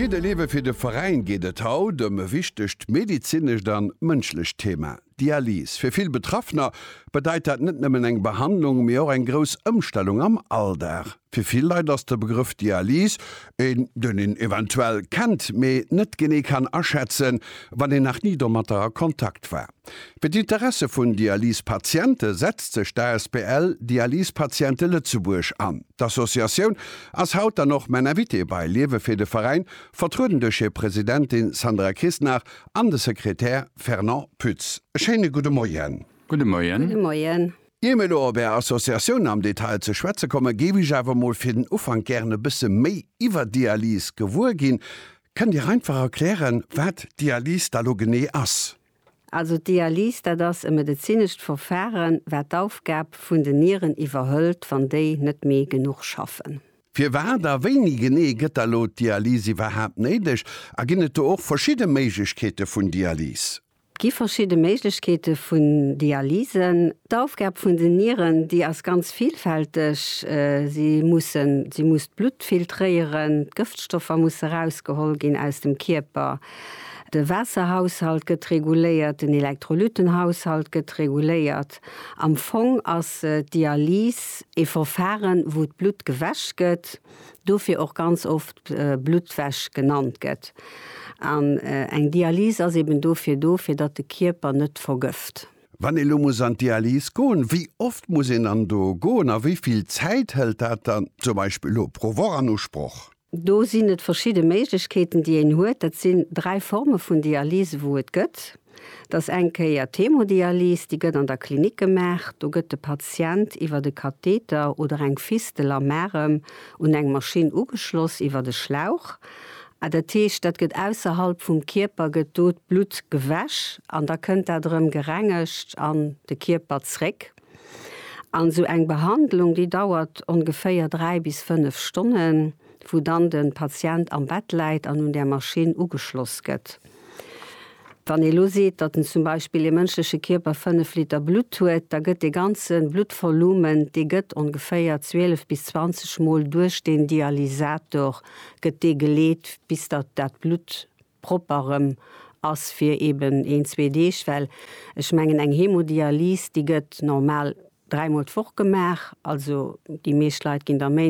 Fir de Lewe fir de Veräin geet et haut ëm e wichtegt medezinescht a mënschlecht Thema, Dialyse. Fir vill Betraffener bedeit dat net nëmmen eng Behandlung, mee och eng grouss Ëmstellung am Alldag. Fir vill Leit ass de Begrëff Dialyse een, deen een eventuell kennt, mee net genee kann aschätzen, wann een nach ni domatter a Kontakt war. Fir d'Interesse vun Dialysepatiente setzt sech d'ASBL Dialysepatiente Lëtzebuerg an. D'Associatioun ass haut dann och mäin Invité bei Liewe fir de Veräin, vertrueden duerch hir Presidentin Sandra Kissner an de Sekretär Fernand Pütz. E schéine gudde Moien. Gudde Moien. Ier mir elo op Är Associatioun am Detail ze schwätze kommen, géif ech awer mol fir den Ufank gären e bësse méi iwwer d'Dialyse gewuer ginn. Kënnt Dir einfach erklären, wat d'Dialyse da lo genee ass? Also d'Dialyse, dat ass e medezinescht Verfahren, wat d'Aufgab vun den Nieren iwwerhëlt, wann déi net méi genuch schaffen. Firwat a wéini genee gëtt da lo d'Dialyse iwwerhaapt néideg? A ginn et do och verschidde Méiglechkeete vun Dialyse? Gi verschidde Méiglechkeete vun Dialysen. D'Aufgab vun den Nieren, déi ass ganz vilfälteg. Si mussen, si muss d'Blutt filtréieren, d'Gëftstoffer musse erausgeholl ginn aus dem Kierper, de Waasserhaushalt gëtt reguléiert, den Elektrolytenhaushalt gëtt reguléiert. Am Fong ass d'Dialyse ee Verfaren, wou d'Blutt gewäsch gëtt. dofir och ganz oft Bluttwäsch genannt gëtt. An eng Dialyse ass eben dofir do, fir datt de Kierper net vergëft. Wann ee lo muss an d'Dialyse goen, wéi oft muss een dann do goen a wéi vill Zäit hëlt dat dann zum Beispill lo pro Woch an Usproch? Do sinn et verschidde Méiglechkeeten, déi een huet. Dat sinn dräi Forme vun Dialyse, wou et gëtt. Et ass eng Kéier d'Hemodialyse, déi gëtt an der Klinik gemaach. Do gëtt de Patient iwwer e Katheter oder eng Fistel am Arem un eng Maschinn ugeschloss, iwwer e Schlauch. A dat heescht, dat gëtt ausserhalb vum Kierper gëtt do d'Blutt gewäsch an da kënnt dat erëm gerengegt an de Kierper zréck. An esou eng Behandlung, déi dauert ongeféier 3 bis 5 Stonnen. wou dann de Patient am Bett läit an un där Maschinn ugeschloss gëtt. Wann ee lo seet, datt en zum Beispill ee mënschleche Kierper 5 Liter Blutt huet, da gëtt dee ganze Bluttvolumen, dee gëtt ongeféier 12 bis 20 mol duerch deen Dialysator gëtt dee geleet, bis datt dat Blutt propper erëm ass fir eben een, zwee Deeg. Well ech mengen, eng Hemodialyse, déi gëtt normal dräimol d'Woch gemaach, also déi meescht Leit ginn der méi.